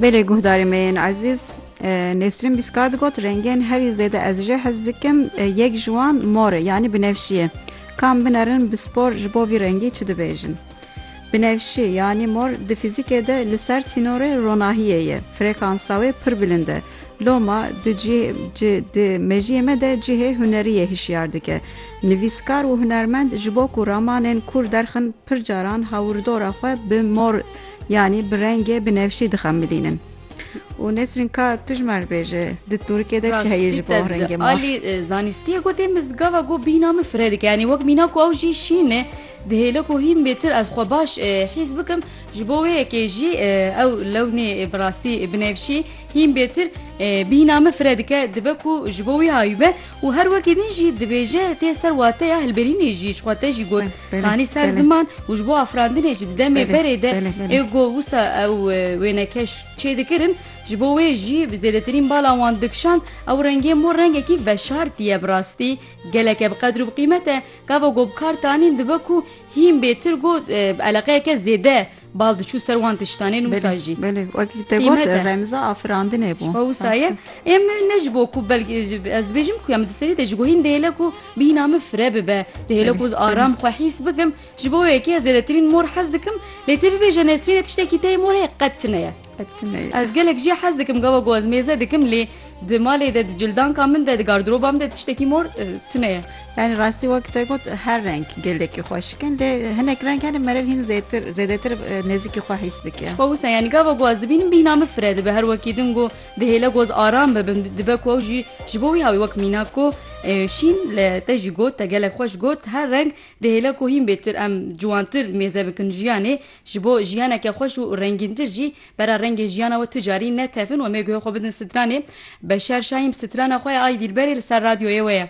Belê guhdarê me yên ezîz Nesrin Bîska digot rengên herî zêde ez jê hez dikim yek ji wan mor e yanî binevşiye. Kam binerin bi spor ji bo vî rengî çi dibêjin. Binevşî yanî mor di fîzîkê de li ser sînorê ronahiyê ye. Frekansa wê pir bilind e. Loma di di mejiyê me de cihê huneriyê hişyar dike. Nivîskar û hunermend ji bo ku ramanên kûr derxin pir caran hawirdora xwe bi mor yanî bi rengê binevşî dixemilînin. Û Nesrîn ka tujmer bêje di Tirkiyê de çi heye ji bo rengê mor? Alî zanîstiyê got ê min gava ku bîna min fireh dike. Yanî wek mîna ku ew jî şîn e dihêle ku hîn bê tir ez xwe baş hîs bikim. Ji bo wê yekê jî ew lewnê bi rastî binevşî hîn bêtir bîhna min fire dike, dibe ku ji bo wî hayûbe û her wekî din jî dibêje tê ser wateya hilberînê jî ji xwe te jî got tanî ser ziman û ji bo afirandinê jî di demê berê de ê got wisa ew wênekeş çê dikirin ji bo wê jî bi zêdetirîn bala wan dikişand ew rengê mor rengekî veşartî ye bi rastî geleke bi qedr û bi qîmet e gava got bi kar tanîn dibe ku Hîn bêtir got bi eleqeyeke zêde bal diçû ser wan tiştanê nu wisa jî. Belê wekî te got remza afirandinê bû. Ji wisa ye em ne ji bo ku belkî ez dibêjim ku ya min di serî de ji gohîn dihêle ku bîna min fire bibe dihêle ku aram xwe hîs bikim ji bo wekî ez zêdetirîn mor hez dikim lê tê bibêje nesrîne tiştekî tê mor heye qet tune ye. Ez gelek jî hez dikim gava ku ez mêze dikim lê di malê de di cildanka min de di gardiroba min de tiştekî mor tune ye. Yani rastî wek te got her reng gelekî xweşikin lê hinek reng hene merev hîn zêtir zêdetir nezîkî xwe hîs dike. Xwe wisa yani gava ku ez dibînim bîna min fire dibe her wekî din ku dihêle ku ez aram bibim dibe ku ew jî ji bo wî hawî wek mînak ku şîn li te jî got te gelek xweş got her reng dihêle ku hîn bêtir em ciwantir mêze bikin jiyanê Ji bo jiyaneke xweş û rengîntir jî bera rengê jiyana we tu carî netefin wemê guhê xwe bidin stranê. Beşer Şahîm strana xwe ye Ay Dîlberê li ser radyoyê we ye.